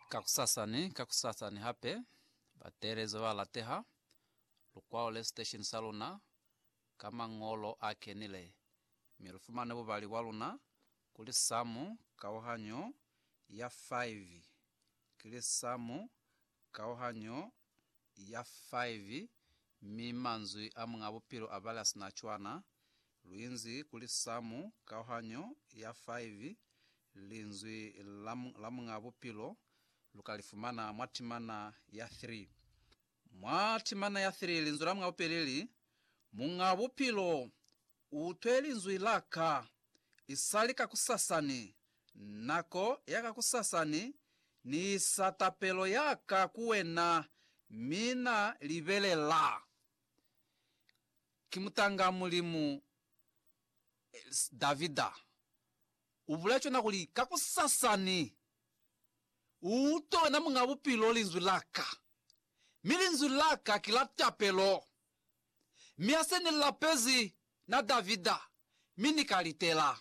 Kakusasa ni kakusasa ni hape, bateelezi ba lateha lukwalo le sitesheni sa luna ka mañolo a kenile, mi lu fumane bubali bwa luna kuli samu kauhanyo ya 5 ki li samu kauhanyo ya 5, mi manzwi a Muñ'a Bupilo a bala sina cwana. Lu inzi kuli Samu, kauhanyo ya 5, Linzwi la, la Muñ'a Bupilo, lu ka li fumana mwa timana ya 3. Mwa timana ya 3, Linzwi la Muñ'a Bupilo li li, Muñ'a Bupilo U utwe linzwi la Ka. I sali kakusasani, nako ya kakusasani, Ni isa tapelo ya ka ku Wena, mi Na libelela. Ki mutanga Mulimu, Davida. U bulea cona kuli, Kakusasani, U utwe, Wena Muñ'a Bupilo, linzwi la Ka. Mi linzwi la Ka ki la tapelo. mi hase ni lapezi na Davida, mi ni ka litela.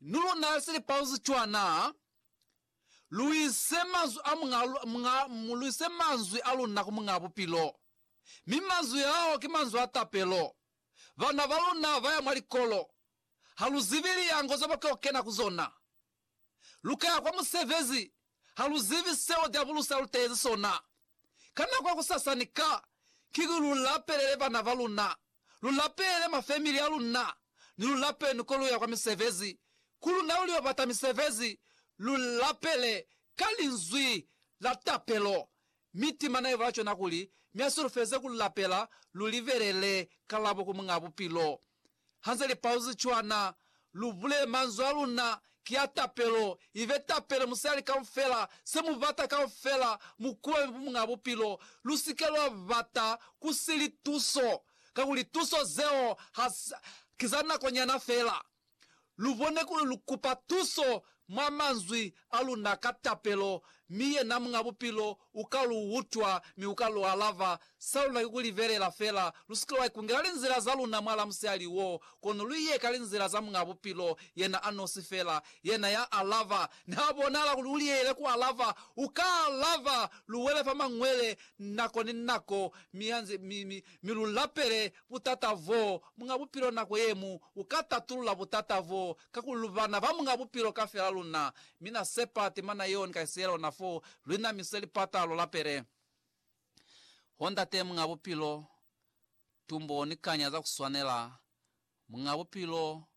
Ni luna ya sili pauzi cwa na? Lu ise manzwi a Muñ'a, Muñ'a, lu ise manzwi a luna ku Muñ'a Bupilo, mi manzwi ao ki manzwi a tapelo. Bana ba luna ba ya mwa likolo, ha lu zibi liango ze ba tlo kena ku zona. Lu ka ya kwa musebezi, ha lu zibi seo Diabulosi a lu tehezi sona. Ka nako ya kusasa ni ka kiki lu lapelele bana ba luna, lu lapelele mafemili a luna, ni lu lapele ni ko lu ya kwa misebezi. Ku luna lu lio bata misebezi, lu lapele ka linzwi la tapelo, mi timana ye bula cona kuli, Mi a solofeze ku lapela, lu libelele kalabo ku Muñ'a Bupilo. Ha ze li pauzi cwana, lu bule, Manzwi a luna ki a tapelo, ibe tapele musali kaufela, se mu bata kaufela, mu kubabe bumunga bupilo. Lu si ke lwa bata ku si lituso, kakuli tuso zeo ha, ki za nako nyana fela. Lu bone kuli lu kupa tuso mwa manzwi a luna ka tapelo, mi yena Muñ'a Bupilo u ka lu utwa mi u ka lu alaba. Sa luna ki ku libelela fela. Lu si ke lwa ikungela linzila za luna mwal'a musihali wo, kono lu ye ka linzila za Muñ'a Bupilo, yena a nosi fela, yena ya alaba. Niha bonahala kuli u liyeyile ku alaba, u ka alaba. Lu wele fa mañwele nako ni nako, mi, mi, mi, mi lu lapele Butata bo Muñ'a Bupilo Nako ye mu u ka tatulula butata bo, kakuli lu bana ba Muñ'a Bupilo kafela luna. Mi Na sepa temana yeo ni ka siela ona fo, lu inamise lipata, lu lapele. Oh, Ndate Muñ'a Bupilo, tumbo ni kanya za ku swanela, Muñ'a Bupilo,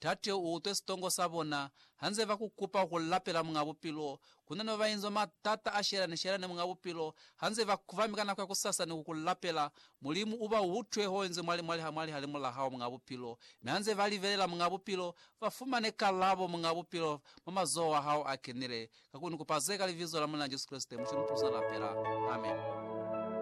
Tate u utwe sitongo sa bona hanze ba ku kupa ku lapela Muñ'a Bupilo. Ku na ni ba ba inzwa matata a shelane-shelane Muñ'a Bupilo hanze ba kuvami ka nako ya kusasa ni ku ku lapela. Mulimu u ba utwe ho inzwe mwa limwali ha mwa lihalimu la hao, Muñ'a Bupilo. Mi hanze ba libelela, Muñ'a Bupilo, ba fumane kalabo, Muñ'a Bupilo, mwa mazoho a hao a kenile. Ka ku ni kupa ze ka Libizo la Muli'a Jesu Kreste, Mulimu, Mupulusina, lapela. Amen.